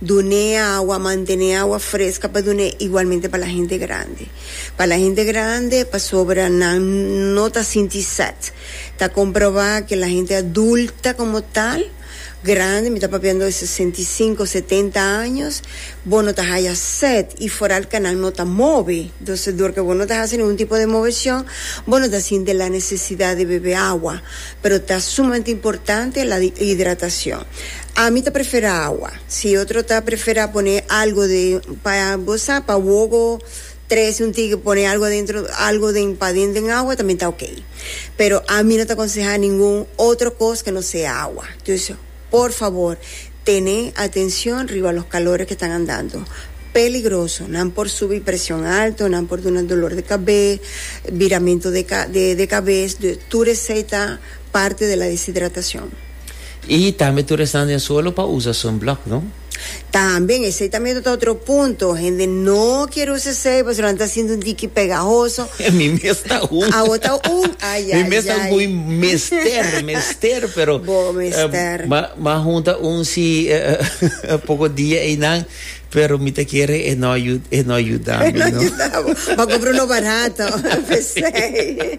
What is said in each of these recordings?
Dun'é awa, manten'é awa fresca pa dun'é igualmente pa la hende grande. Pa la hende grande pasobra nan no ta sinti sed. Ta comprobá que la hende adulta como tal, grande, mi ta papiando de sesenta i sinku, setenta años, bo no ta haya sed y foral que nan no ta mobi. Entonces dor que bo no ta haci ningun tipo de movecion bo no ta sinti la necesidad di bebe awa. Pero ta sumamente importante la di hidratacion. Ami ta prefera awa. Si e otro ta prefera pone algo den pa bo sa pa wogo tres un tike pone algo adentro algo den paden den awa tambe ta ok. Pero ami no ta aconseha ningun otro cos ke no sea awa. Dus. Por fabor, tene atencion riba los calores que tan andando peligroso. Nan por subi presion alto, nan por duna dolor de cabé, biramento de de cabes, tur esey ta parte de la deshidratacion. Y tambe tur esnan den solo pa usa sunblock, no? Tambe, esei ta mester ta otro punto, hende no kier usa esei pasobra nan ta sinti un tiki pegahoso. Mi mes ta un. Awo ta un, ayayay. Mi mes ta un ku mi mester, mester, pero. Bo mester. Ma, ma hunta un si poko dia einan, pero mi ta kere e no yu, e no yuda mi no. E no yuda bo. Bo a kompra uno barato pa esei.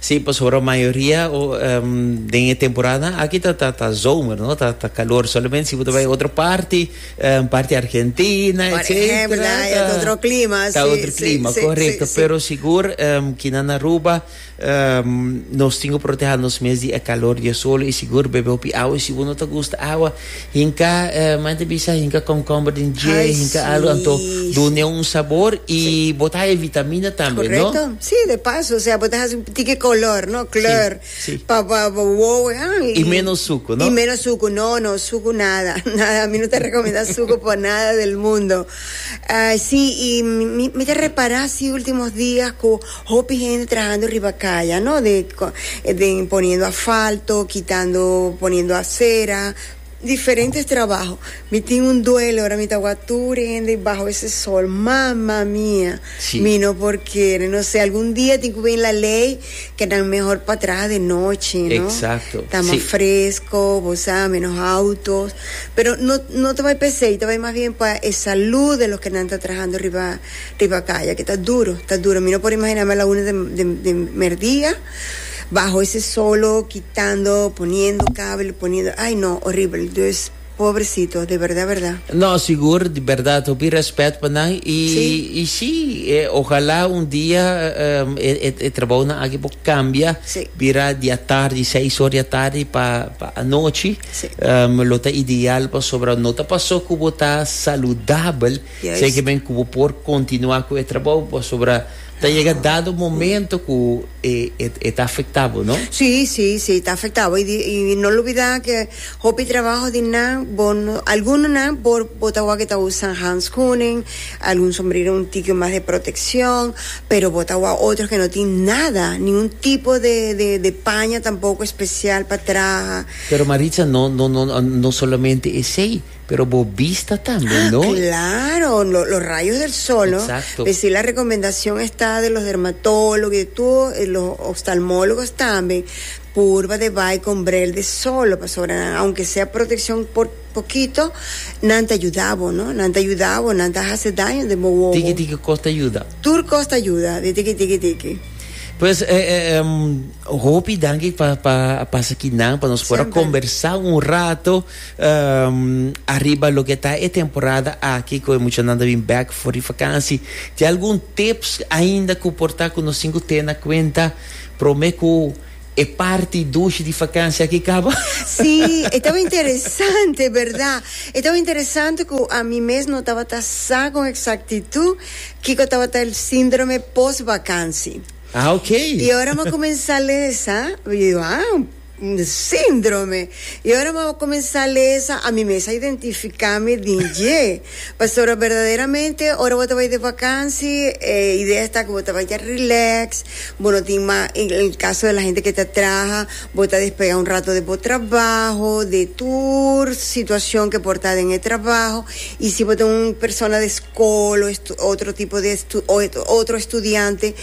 Sí, pasobra mayoria den e temporada aki ta ta ta zomer, no? Ta ta kalor. Solamente si bo ta bai otro parti, parti Argentina, Por etcétera, ehempel, ah, ya ta otro clima, ta sí, otro sí, clima, sí, correcto. sí, sí. Pero sigur ki nan Aruba nos tin cu proteha nos mes di e calor di e sol y sigur bebe hopi awa y si bo no ta gusta awa Hinka eh maña ta bisa hinka concombre den dje Ai hinka si alu anto dun'e un sabor i Si. bo ta haña vitamina tambe no. Correcto si de paso osea bo ta haci un pitique color no kleur Si si. pa pa bo wowo ah i I menos suco no. i menos suco no no suco nada nada a mi no ta recomenda suco por nada del mundo ah si i mi mi ta repara si ultimos dia's cu. Hopi hende trahando riba kaya no de den poniendo afalto kitando poniendo asera diferentes trabaho mi tin un duele ora mi ta wak tur hende baho ese sol mama mia mi no por kere no se algun dia tin cu bini la ley ke nan mehor pa traha de nochi no ta mas fresco bo sa menos autos pero no ta bay pesey ta bay mas bien pa e salud de los ke nan ta trahando riba. Riba kaya ki ta duru, ta duru. Mi no por imaginá mi a la una de, de, de merdia, baho ese solo, kitando, poniendo kabel, poniendo, ay no, horibel. Dus, pobrecito, de berdad, berdad. No, sigur, di berdad, hopi rèspèt pa nan, i, Sí. i sí, e, ojalá un dia e, e, e trabounan aki por kambia, Sí. bira di atardi, seis hor di atardi pa, pa anochi, Sí. lo ta ideal, pasobra no ta pasó ku bo ta saludabel. Seki men ku bo por kontinuá ku e trabou pasobra ta yega dado momento ku e ta afektá bo, no? Sí, sí, sí, ta afektá bo. I no lubidá ku hopi trabaho di nan, bo no, algunonan bo bo ta wak e ta usa handskunen, algun sombrero un tiki mas di protekshon, pero bo ta wak otro ku no tin nada, ni un tipo de de de paña tampoko espesial pa traha. Pero Maritza, no no no solamente esei. Pero bo bista tambe, no? Ah, claro! Lo, los rayos del sol, no? Exacto. Pe si la recomendacion esta de los dermatólogos y de tur e los oftalmólogos tambe, purba de bai con brel de sol, pasobra nan, aunke sea proteccion por pokito, nan ta yuda bo, no? Nan ta yuda bo, nan ta hasi daño den bo wowo. Tiki tiki cos ta yuda. Tur cos ta yuda, di tiki tiki tiki. Pues, e, e, em, hopi danki pa, pa, pa esaki nan, pa nos por a Semper. conversa un rato. Ariba loke ta e temporada aki ku e muchanan ta bin bèk for di fakansi, tin algun tips ainda ku por ta ku nos tin ku tene kuenta promé ku e parti dushi di fakansi aki kaba? Sí, e tabata interesante, berdá. E tabata interesante ku ami mes no tabata sa kon eksaktitut kiko tabata el síndrome pos vakansi. Ah, ok. I ora mi a kuminsá lesa, mi dijo, ah. Síndrome. I ora mi a kuminsá lesa, ami mes a identifiká mi den dje. Pastora, berdaderamente ora bo ta bai den vakansi, e idea esta ku bo ta bai rilèks, bo no tin mas, en el kaso di lahen ku ta traha, bo ta despegá un rato den bo trabaho, di tur situashon ku por ta den e trabaho. I si bo ta un persona di skol o otro tipo di, otro estudiante.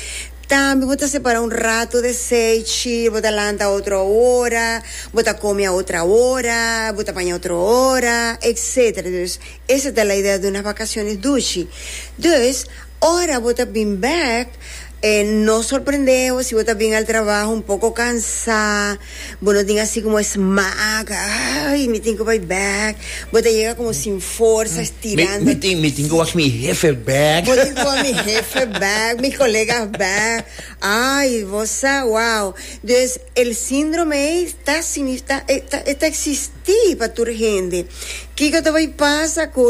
Tambe bo ta separa un rato de seichi, bo ta lanta otro ora, bo ta komi a otra ora, bo ta paña otro ora, etc. Dus esa ta la idea di unas bakasiones dushi. Dus, ora bo ta bin bèk, no sorprendé bo si bo ta bin al trabaho un poko kansá, Bo no tin asi como es maak ay mi tin cu bay back bo ta yega como sin forsa estirando mi tin mi tin cu wash mi hefe back bo tin cu wash mi hefe back mi colega back ay bo sa wow dus el síndrome ey ta ta ta existi pa tur hende kico ta bay pasa cu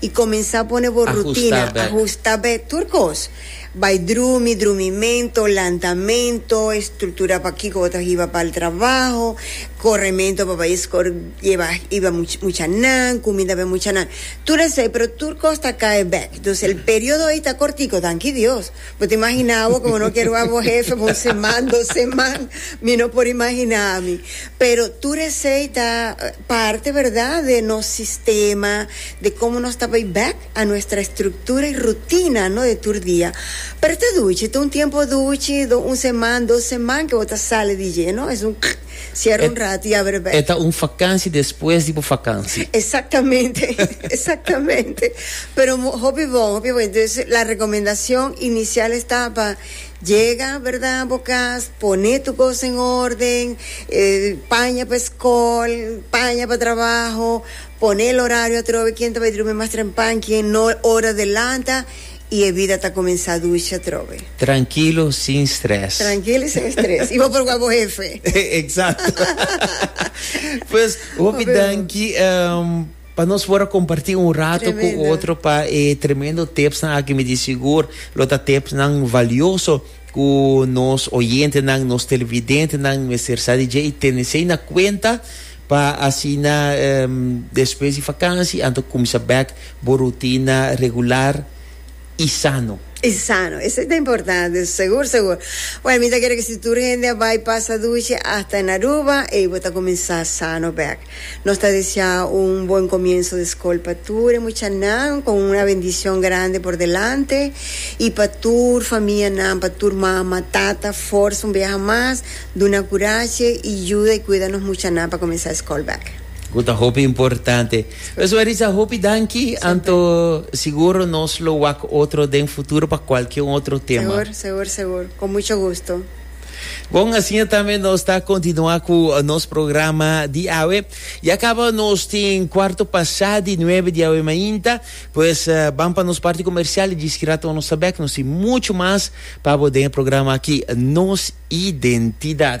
y comenzá pone bo rutina, ahusta bek, tur cos. Bay drumi, drumimento, lantamento, estructura pa kico bo ta hiba pa'l trabajo, corremento pa bay escor lleba hiba muchanan, cuminda bay muchanan. Tur esey, pero tur cos ta cae bek. Entonces el periodo ey ta cortico, danki Dios. Bo ta imaginá awor ku bo no ke rua bo hefe pa un seman, dos seman? Mi no por imaginá mi. Pero tur esei ta parti, berdá, den nos sistema, den komo nos ta bai bèk a nuestra estruktura i rutina no den tur dia. Pero ta duchi, ta un tiempo duchi, un seman, dos seman ke bo ta sali di dje, no? Es un. Sier un rato y aber e bek. E ta un vakansi despues di bo vakansi. Exactamente, exactamente. Pero hopi bon, hopi bon. Entonces la recomendacion inicial estaba yega, verda, bo cas, pone tu cos en orden, eh, paña pa escol, paña pa trabaho, pone el horario atrobe, ken ta bay drumi mas trempan, ken no, ora delanta. I e bida ta kuminsá duchi atrobe. Trankilo sin stres. Trankilo i sin stres. I bo por wak bo hefe. Eksakto. Pues, hopi danki pa nos por a kompartí un rato ku otro pa e tremendo tipsnan aki. Mi di sigur lo ta tipsnan valioso ku nos oyentenan, nos televidentenan mester sa di dje i tene esei na kuenta. Pa asina despues di fakansi anto kumsa bèk bo rutina regular i sano. I sano. Esei ta importante. Segur, segur. Buen, mi ta kere ke si tur hende a bai pasa dushi hasta en Aruba, ei bo ta kuminsá sano bèk. Nos ta deseá un buen komienso di skol pa tur e muchanan, kon una bendishon grandi por delante. I pa tur famianan, pa tur mama, tata, forsa un biaha mas. Duna kurashi i yuda i kuida nos muchanan pa kuminsá eskòl bèk. Ku ta hopi importante. Pues Marisa, hopi danki, anto siguro nos lo wak otro den futuro pa kualke un otro tema. Segur, segur, segur. Ku mucho gusto. Bon, asiña tambe nos ta kontinuá ku nos programa di awe. Ya kaba nos tin kuarto pasá di nuebe di awe mainta. Pues, ban pa nos parti komersial i djis ki rato nos ta bèk. Nos tin mucho mas. Pabo den e programa aki Nos Identidad.